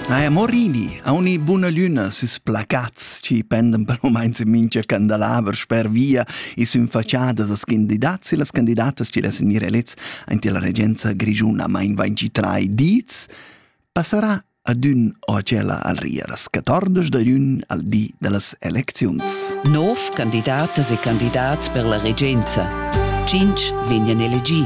Naja, morini ha uni buna lüna süs placats chi pendan per momaints in mincha candelaver sper via e sün faciadas as candidats e las candidatas chi less gnir elets aint illa regenza grischuna ma invain chi trai dits, passarà ad ün o a tschella al rier as 14 da ün al di da las elecziuns. Nov candidatas e candidats per la regenza. Tschinch vegnan elegì.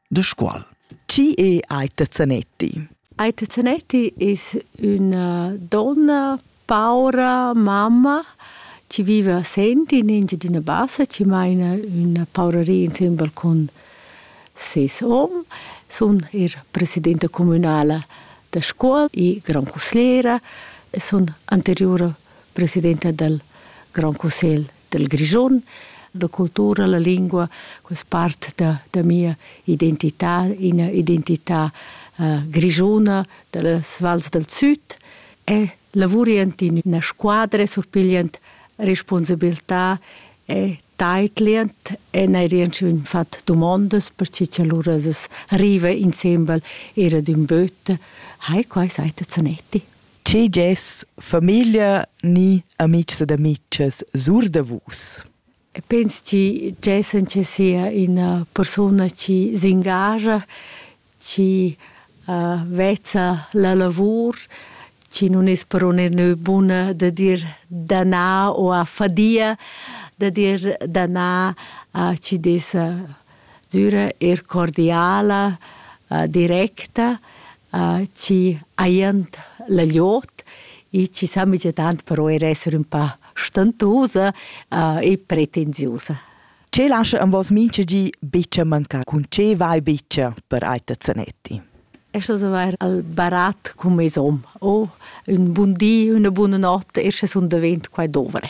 De squal? Chi è Aita Zanetti? Aita Zanetti es üna donna paura mamma chi viva a Senti in Engiadina Bassa, chi maina üna pauraria insembel cun ses hom. Sun eir presidenta cumünala da Scuol e grand cussiera e sun anteriura presidenta dal Grand Cussegl del Grischun, da cultura, la lingua, quest part da, da mia identità, ina identità uh, grischuna das vals del Süd e lavurient in una squadra surpigliant responsabilità e taitlient e nei rienschun fat domondas per ci che lura es arriva insembel era d'ün böt hai quai seite zanetti Tgi gess famiglia ni amitgs ed amitgas sur da vus? Pens chi gessen che sia ina persuna chi s'ingascha, chi uh, vezza la lavur, chi nun es però nenü buna da dir danà o a fadia da dir danà a chi dessa düra eir cordiala, directa, chi hajand la gliout e chi s'amigia tant però eir esser ün pa stentusa e pretensiusa. Che lascha ün vos mincha di bicha mancar? Cun che vai bicha per Aita Zanetti? Es das avair al barat cun meis hom? O ün bun di, üna buna not, escha sun davent quai dovre.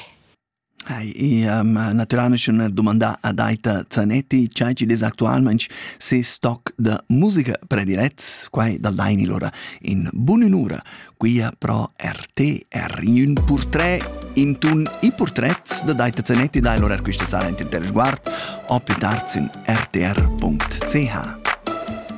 Ai, i m'ha natüralmaing dumandà Adaita Zanetti cha chi'd es actualmaing ses stoc da musica predilets. Quai dal daini lura in bun'ün'ura qui pro RTR. In ün purtret intuorn i purtrets da Daita Zanetti dai lura quista sera int inter sguard o più tard sün rtr.ch.